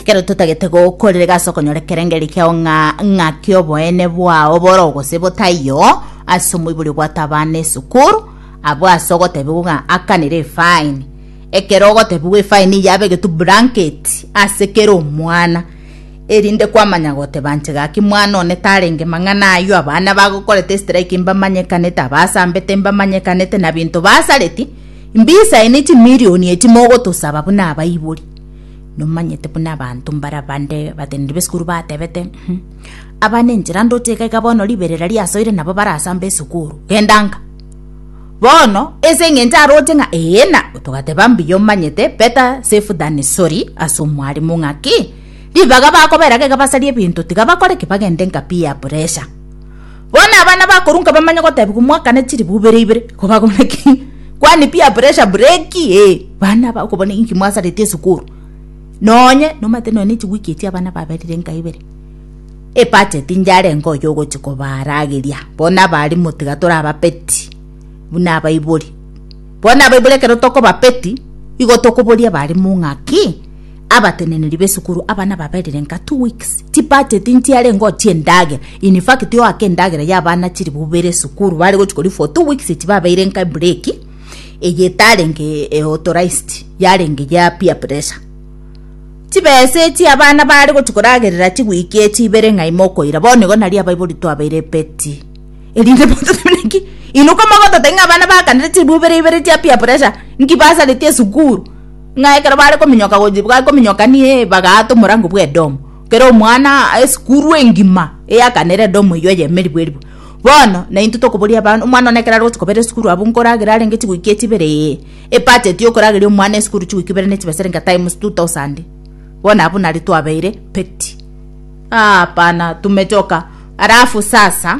Kero totagete gokorerega ase okonyora ekerengeri kiao ng'a ng'aki oboene bwao boro gose botaiyo ase omoibori obwate abana esukuru abwo ase ogotebiwa ng'a akanire efaini ekero ogotebiwa efaini yabe egetu blanket ase kera omwana erinde kwamanya goteba nche gaki mwana one tarenge mang'ana aywo abana bagokorete estrike mbamanyekanete abasambete mbamanyekanete na binto basareti mbisaini chimilioni echi mogotosaba buna abaibori Nomanyete buna abanto mbare abande abateneneri b'esukuru batebete, Abana enchera ndoche iga iga bono riberera riasoire nabo barasambe esukuru. Genda nka. Bono ase eng'encho aroche ng'a ee na togateba mbuya omanyete better safe than sorry ase omwarimu ng'aki ribaga bakobera iga basarie ebinto tiga bakore ki bagende nka peer pressure. Bono abana bakoru nkabamanya gotebigwa mwakane chiribu ibere ibere, ko bagomenya ki? Kwani peer pressure bureki? Ee, bana aba okobona inki mwasareti esukuru. Nonye nomanyete nonya ne chiweek echi abana baberire nka ibere. Ebudget njarenge oyo ogochi kobarageria. Bono abalimu tiga torababeti buna abaibori. Bono abaibori ekero tokobabeti, igo tokoboria abalimu ng'a ki? Abateneneri b'esukuru aba nababerire nka two weeks ti budget ntiarenge otie endagera in fact oake endagera y'abana chiri bubere esukuru bare gochi kori for two weeks tibabeire nka break eye etarenge eh, authorized yarenge ya peer pressure chibesa echi abana bare gochi koragerera chiwiki echi ibere ng'a ime okoira bono igo nari abaibori twabeire epeti erinde bototemeneki inuka mogotote ng'a abana bakanire chiri bubere ibere chia peer pressure nki basareti esukuru Ng'a ekero bare kominyoka gochia bakominyoka nie bagaata omorango bw'Edomu, kera omwana esukuru engima eyakanere Edomu eyio eye emeribu eribu. Bono na intwe tokoboria aba omwana one ekero arogochia kobera esukuru abwo nkoragere arenge chigwiki echi ibere ee, ebudget yokorageria omwana esukuru chigwiki ibere ne chibeserinka times two thousand. Bono abwo nari twabeire peti? Aah hapana tumechoka. Alafu sasa.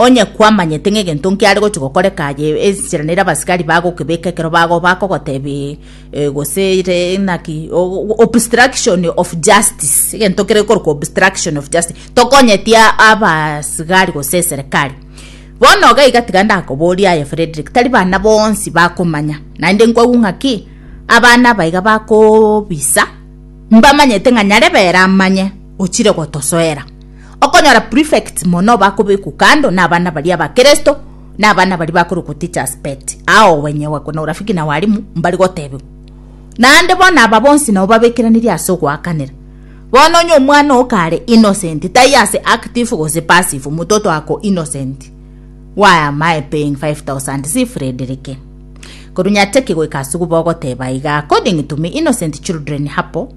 Onye kwamanyete ng'a egento nkiare gochia gokoreka aye enchera nere abasikari bagokebeka ekero bago bakogotebia eh gose ere naki obstruction of justice egento kere gekorokwa obstruction of justice tokonyeti abasigari gose eserekari bono iga iga tiga ndakoborie aye Fredrick tari bana bonsi bakomanya naende nkwagwa ng'a ki abana aba iga bakobisa mbamanyete ng'a nyarebe ere amanye ochire gotosoera. Okonyora prefects mono bakobekwa kando na abana baria ba Kristo na abana baria bakorokwa teachers but ao wenyewe na urafiki na walimu mbari gotebiwa. Naende bono aba bonsi nabo babekeranirie ase ogoakanera. Bono onye omwana oo kare innocent taiyo ase active gose passive omototo ako innocent. Why am I paying 5000 si Frederike? Koru nyachaki goika ase ogoba ogoteba iga according to me innocent children hapo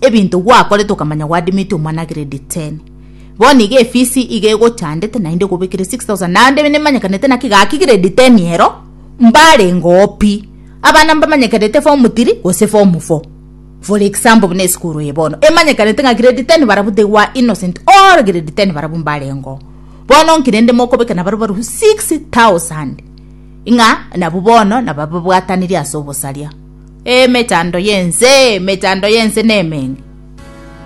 Ebinto gwakorete okamanya gwadimeti omwana grade 10. Bono iga efisi iga egochandete naende ekobekire 6000 naende nemanyekanete naki gaki grade 10 ero mbarengeo pi. Abana mbamanyekanete form 3 gose form 4. For example buna esukuru eye bono emanyekanete ng'a grade 10 barabwo they were innocent all grade 10 barabwo mbarengeo. Bono nki rende mokobeka nabarabwo barabwo 6000 ng'a nabwo bono nabababwatanirie ase obosaria. Ee, emechando y'ense, emechando y'ense nemenge!